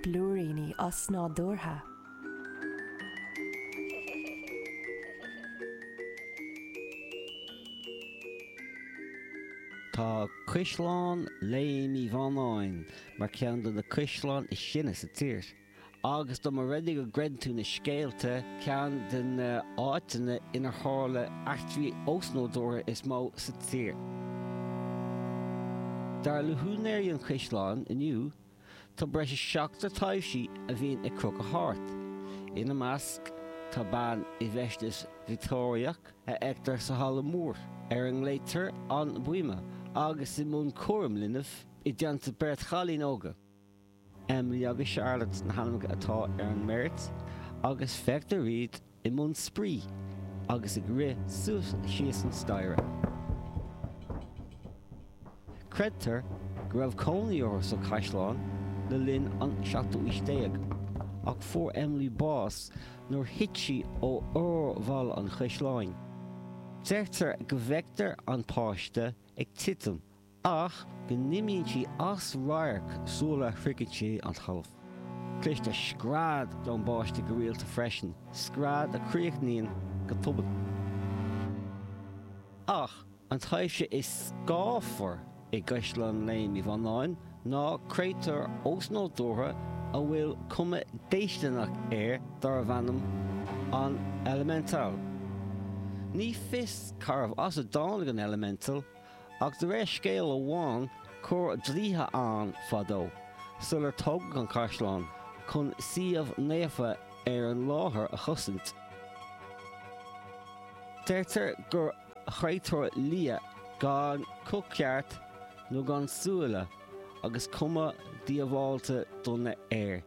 Blúiríní osnádúrtha. Tá Caisleán Léim Uí Bhánáin mar ceann de na caisleáin is sine sa tír. Agus dá mba rud é go gcreideann tú na scéalta, ceann de na háiteanna inar tharla eachtraí osnádúrtha is mó sa tír. Dar le húinéirí an chaisleáin inniu, tá breis is seachtar taibhsí a bhíonn ag crochadh thart. Ina measc, tá bean i bhfeisteas Victeoiriach a fheictear sa halla mór, ar a nglaoitear An Buime, agus í i mbun cúraim linbh i dteannta beirt chailín óga. Emily agus Charlotte na hainmneacha atá ar an mbeirt agus feictear iad i mbun spraoi agus ag rith suas síos an staighre. Creidtear go raibh cónaí orthu sa chaisleán le linn an seachtú aois déag ach fuair Emily bás nuair thit sí ó fhorbhalla an chaisleáin. Deirtear go bhfeictear an páiste ag titim ach go n-imíonn sí as radharc sula shroicheann sí an talamh. Cloistear scread ón bpáiste go rialta freisin, scread a chríochnaíonn go tobann. Ach an taibhse is scáfar i gCaisleán Léim Uí Bhánáin ná créatúr osnádúrtha a bhfuil cuma déistineach air darbh ainm an Elemental. Ní fios cárbh as a dtáinig an Elemental, Ach de réir scéal amháin, chuir draoithe ann fadó, sular tógadh an caisleán, chun suíomh naofa ar an láthair a chosaint. Deirtear gur chréatúr liath gan guth ceart nó gan súile agus cuma diabhalta dona air.